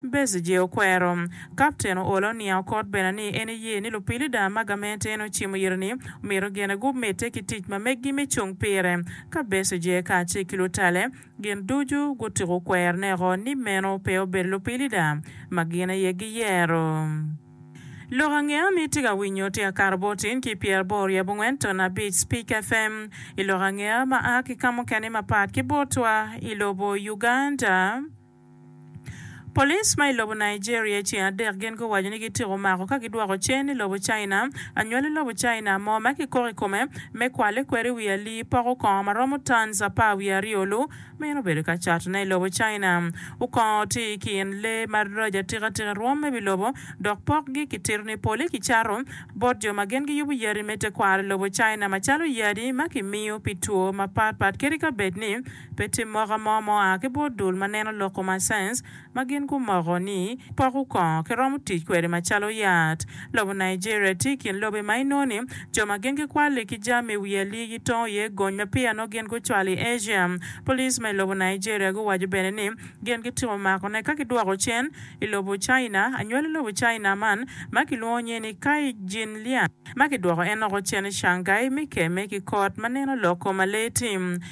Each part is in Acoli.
Bezije okwero. Kapten oolo oniang okot bene ni en eye ni lupilida ma gamente en ocimo iri-ni myero gene gumedde ki tic ma meggi me cung pire. Ka Bezije kacel ki lutalle gin ducu gutuko kwero neko ni meno pe obedo lupilida ma gin aye giyero. Lok angeya ma itye ka winyo tye akato botin ki pyer aboro ryo abongwen ton abic Speak FM i lok angeya ma a ki ka mukene mapat ki botwa i lobo Uganda. Police ma i lobo Nigeria i ceng adek gin guwaco ni gityeko mako ka gidwoko cen i lobo China. Anywali lobo China mo ma kikok i kome me kwale kweri wi alii poko kongo ma romo tons apar wiye aryo lu meno obedo ka catone i lobo China. Okongo tye i kin lee ma rac atika tika i rwom me wi lobo dok pokgi kitito ni pole kicato bot jo ma gin giyubo yadi me tekwaro i lobo China macalo yadi ma kimiyo pi two mapat pat kadi ka bed ni Pe tim moka mo ma oa ki bot dul ma neno lok kuman science ma gin gumoko ni poko kongo kiromo tic kwede macalo yat. Lobo Nigeria tye i kin lobe ma inongo ni jo ma gin gikwalli ki jami i wi alii gitongo iye gony ma peya nongo gin gucwalo i Asia. Police ma i lobo Nigeria guwaco bene ni gin gitimo makone ka gidwoko cen i lobo China. Anywali lobo China man ma kilwongo nyinge ni Kai Jinliang ma kidwoko en oko cen i Shanghai me kemme ki kot ma neno lok kom alee tim.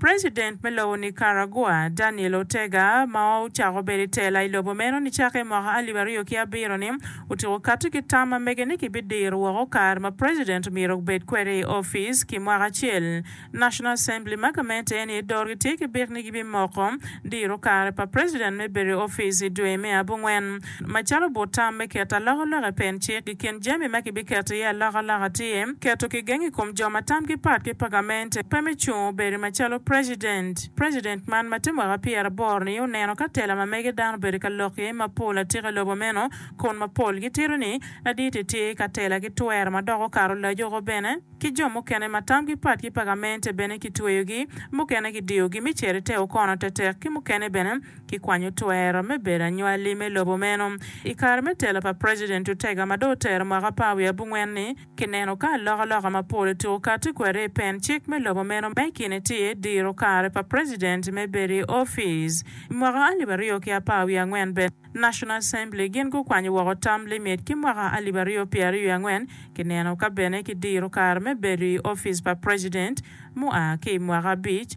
President me lobo Nicaragua, Daniel Ortega, ma ocako bedo i tela i lobo meno nicake i mwaka alip aryo ki abiro ni, otyeko kati ki tam ma mege ni kibidiro woko kare ma president omyero obed kwede i opic ki mwaka acel. National Assembly ma gamente en iye dorgi tye ki byek ni gibimoko diro kare pa president me bedo i opic i dwe me abongwen. Macalo but tam me keto alokaloka i pen cik, i kin jami ma kibiketo iye alokaloka tye keto kigeng i kom jo ma tamgi pat ki pagamente pe me cung obedi macalo precedent. Precedent man ma tye mwaka pyera aboro ni oneno ka tela ma mege dano obedo ka lok iye ma pol atika i lobo meno kun ma pol gitito ni ladit i tye ka tela ki twero ma dok okato lajuko bene ki jo mukene ma tamgi pat ki pagamente bene kitweyogi mukene kidiyogi me cito i te okono tetek ki mukene bene Kikwanyo twero me bedo anywali me lobo meno. I kare me telo pa President Ortega ma dong otero mwaka apar wiye abongwen-ni, kineno ka alokaloka mapol otuko kati kwede i pen cik me lobo meno ma i kine tye diro kare pa president me bedo i opic. I mwaka alip aryo ki apar wiye angwen bene, National Assembly gin gukwanyo woko term limit ki mwaka alip aryo pyera aryo wiye angwen, kineno ka bene kidiro kare me bedo i opic pa president mua ki i mwaka abic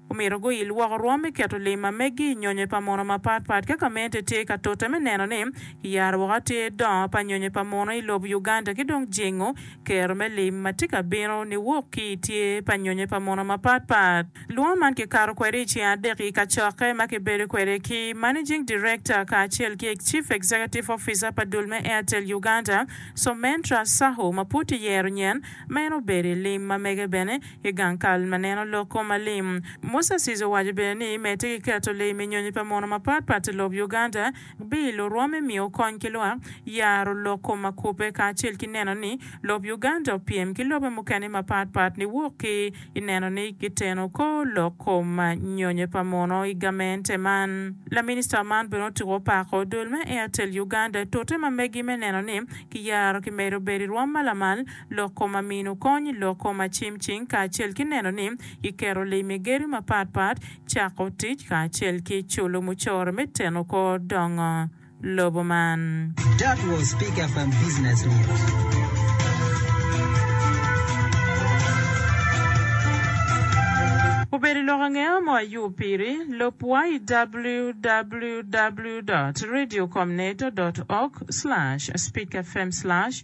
Omito guyil woko rwom me keto lim ma meggi i nyonyo pa mono mapat pat ka gamente tye ka tute me neno ni kiyaro woko atir dongo pa nyonyo pa mono i lob Uganda ki dong jingo kero me lim ma tye ka bino niwok ki i tyer pa nyonyo pa mono mapat pat. Lwongo man kikato kwede i ceng adek i kacokke ma kibedo kwede ki Managing Director kacel ki Chief Executive Officer pa dul me Airtel Uganda, Soumentra Sahu ma pud tye yero nyen ma en obedo i lim ma mege bene. I gang kal ma neno loko ma lim, Musa Sis owaco bene ni me tye ki keto lee me nyonyo pa mono mapat pat i lob Uganda, bii lurwome miyo kony ki lwak, yaro loko ma kubbe kacel ki neno ni lob Uganda opyem ki lobe mukene mapat pat niwok ki i neno ni giteno kor loko ma nyonyo pa mono i gamente man. Laminista man bene otuko opako dul me Airtel Uganda tute ma megi me neno ni kiyaro kimedo bedo i rwom ma lamal lok kom amino kony, lok kom acimcing, kacel ki neno ni kiketo lee me gedo mapat pat cako tic kacel ki culo mucoro me teno kor dongo lobo man. That was Big FM Business News. Obedo lok angeya mo ayub piri. Lub wa i www dot radiocomnet dot org slash speakfm slash.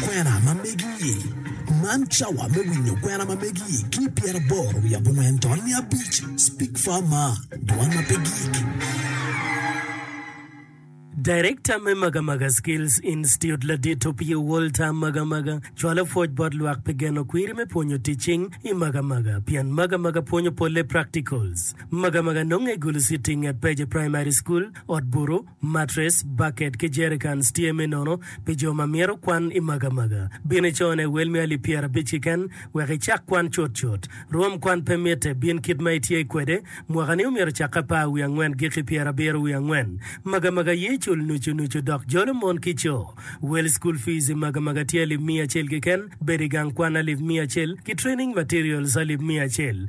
Kwena ma megi-i. Man cawa me winyo kwena ma megi-i ki i pyeraboro wiye abongwen to niya abic. Speak far maa, dwan ma pe gik. Director me Magamaga Skills Institute ladit Opio Walter Magamaga cwalo pwoc bot lwak pi geno kwiri me pwonyo teaching i Magamaga pien Magamaga pwonyo polle practicals. Magamaga nonge i Gulu City nget Peje Primary School, Ot Buru, Matres, baket ki jerikans tye me nono pi jo ma myero kwan i magamaga. Bin i cone wel me alip pyerabic keken wek icak kwan cutcut. Rwom kwan pe mitte, bin kit ma itye kwede. Mwakani omyero ocakke apar wiye angwen giki pyerabiro wiye angwen. Magamaga ye cul nucu nucu dok jolo mon ki co. Wel school fees i magamaga tye alip miya acel keken, bedo i gang kwan alip miya acel, ki training materials alip miya acel.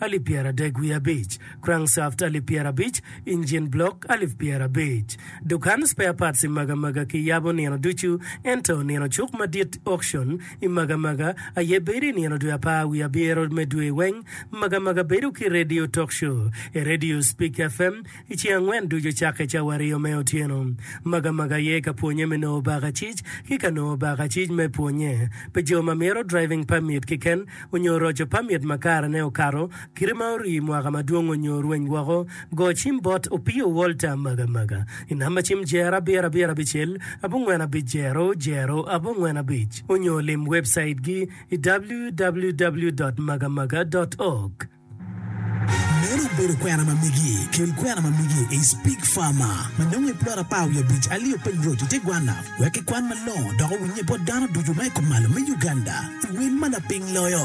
alip pyeradek wiye abic, crankshaft alip pyerabic, engine block alip pyerabic. Dukan spare parts i Magamaga ki yabo nino ducu, ento nino cuk madit, auction, i Magamaga aye bedo i nino dwe apar wiye abyero me dwe weng. Magamaga bedo ki radio talk show, e radio Speak FM, I ceng angwen ducu cakke cawario me otyeno, magamaga aye ka pwonye me nongo bakacic ki ka nongo bakacic me pwonye pi jo ma mito driving permit kiken onyo roco permit ma karene okato kite ma orii mwaka madwong onyo rweny woko, go cim bot Opio Walter magamaga i namba cim jer abiro abiro abicel abongwen abic jero jero abongwen abic onyo lim webcait gi i www dot magamaga dot org. Meno obedo kwena ma migi. Kel kwena ma migi is pig farmer ma nongo i plot apar wiye abic alio piny roc i te gwanna wek ki kwan ma longo dok owinye bot dano ducu ma i kumalo me Uganda i wel ma laping loyo.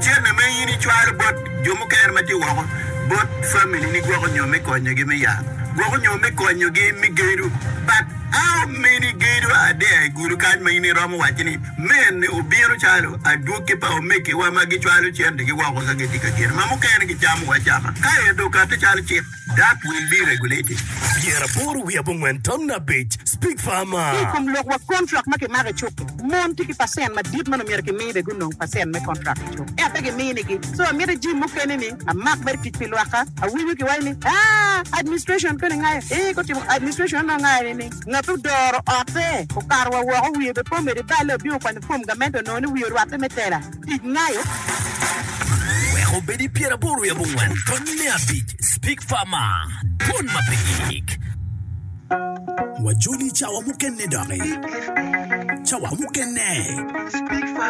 Cente ma in icwalo bot jo mukene ma tye woko, bot familini gwoko nyo me konyogi me yat, gwoko nyo me konyogi me gedo. But how many gedo are there i gulu kany ma in iromo wacci ni mene obino calo adwogi pa omegiwa ma gicwalo centegi woko ka gitye ka gedo ma mukene gicamo acama kaeto okatte calo cik? Dak wil me regulating gear aboro wiye abongwen tamna abic, Speak Farmer. Ki i kom lok wa kontrak ma kimako i cuk-ki, mon tye ki pacent madit ma omyero kimi be gunong pacent me kontrak i cuk, ento pe giminigi. So amiti jim mukene ni amak mere tic pi lwakka. Awinyo kiwaco ni, Aa, administration koni ngayo? Ee, gutimo administration onongo ngayo ni ni ngat ma odoro otte okato wa woko wiye be pe omede balle obino kwanyo fom gamente onongo ni wiye orwatte me tela. Tic nayo weko obed i pyeraboro i abongwen tony me abic Speak Farmer Dwon ma pe gik. Wajoli i cawa mukene doki. Cawa mukene.